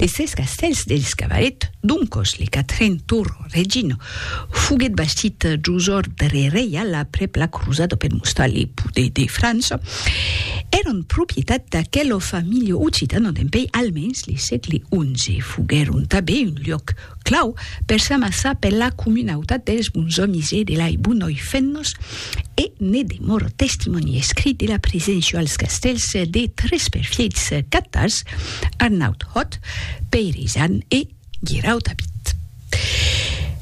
Les sèis castèls dels Cavalet, doncos le quatren Tour Regina, foguèt bastit jos òrdre reial aprèp la crosada per mostrar le poder de França, èran propietat d'aquela familha occitana dempèi almens le sègle xi. Foguèron tanben un luòc Clau, per s'amassar per la comunautat dels bons òmis e de lai bonòi fennos, e ne demòr testimòni escrit de la preséncia als castèls de tres perfièits catars, Arnaut Hòt, Pèire Isan e Guirau Tabit.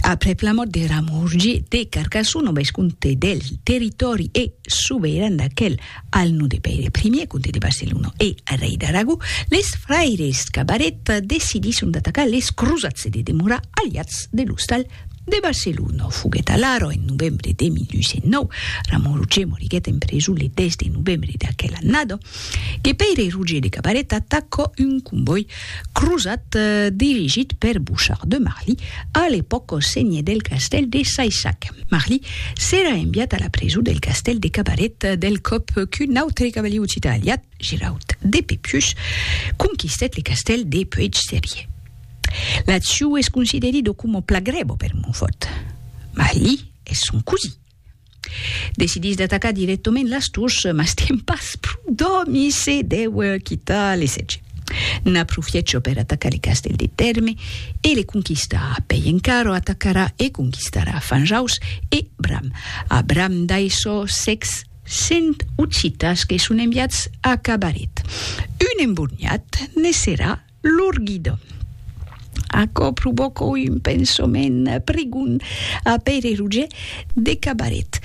Aprèp la mòrt de Ramon Rogier de Carcassona, vescomte del territòri e soberan d'aquel, Al nom de Pèire Primier, comte de Barcelona e rei d'Aragó, les fraires Cabaret decidisson d'atacar les crosats e de demorar aliats de l'ostal de Barcelona. Foguèt alara en novembre de 1809, Ramon Roger moriguèt en preson le 10 de novembre d'aquela annada, que Pèire Roger de Cabaret atacà un convòi Crosat, dirigit per Bouchard de Marly, a l'epòca senhè del castèl de Saissac. Marly s'èra enviat a la preson del castèl de Cabaret del còp qu'un autre cavalier occitan aliat, Giraud de Pépius, conquistèt le castèl de Puèg-Serier. L'aciu es considerit o coma pla grèva per Montfort. Marly es son cosí. Decidís d'atacar dirèctament las tors, mas tien pas pro d'òmi, se dèu quitar le sètge. N'aprofiècho per atacar le castèl de Tèrme e le conquistar. Pei encara atacarà e conquistarà Fanjaus e Bram. A Bram dai çò sècs cent occitas que son enviats a Cabaret. Un emborniat ne serà Lor guida. Aquò provòca un pensament prigon a Pèire Roger de Cabaret.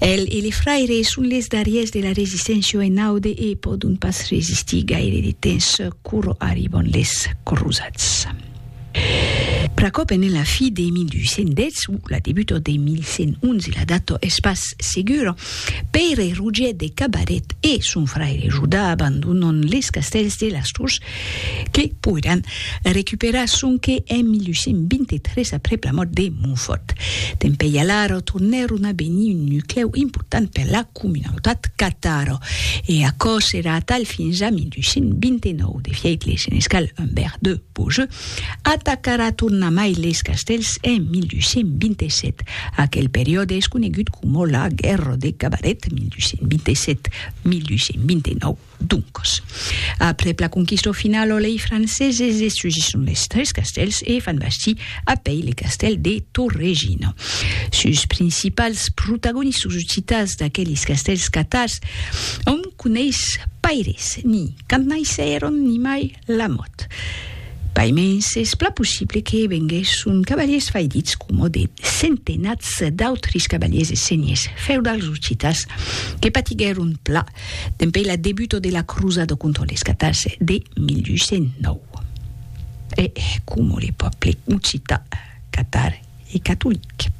El e le fraire son les darriers de la resisténcia en aude e pòdon pas resistir gaire de temps quoro arriban les crosats. Pr'aquò pendent la fi de 1210 o la debuta de 1111, la data es pas segura, Pèire Rogier de Cabaret e son fraire Judà abandonan les castèls de las Tors que poiràn recuperar sonque en 1123 aprèp la mòrt de Montfòrt. Dempèi alara tornèron a venir un nuclèu important per la comunautat catara e aquò serà atal fins a 1229 de fièit le senescal Humbert de Beaujeu Atacarà tornamai leis castèls en 1227. Aquel periòde es conegut coma la Guèrra de Cabaret, 1227, 1229, doncas. Aprèp la conquista finala lei franceses destrugisson leis tres castèls e fan bastir a pei le castèl de Torregina. Sus principals protagonistas occitans d'aquelis castèls catars òm coneis paires, ni quand naissèron ni mai Lamòt. Pas mens es plan possible que venguèsson cavaliers faidits coma de centenats d'autris cavaliers e senhers feudals occitans que patiguèron pla dempèi la debuta de la crosada contra les catars de 1209. E coma le pòble occitan, catar, e catolic.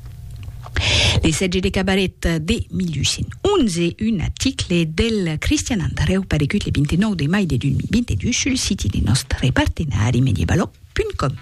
Le sètge de Cabaret de 1811, un aticle del Cristian Andrèu paregut le 29 de mai de 2022 sul siti de nòstre partenari medievalog.com.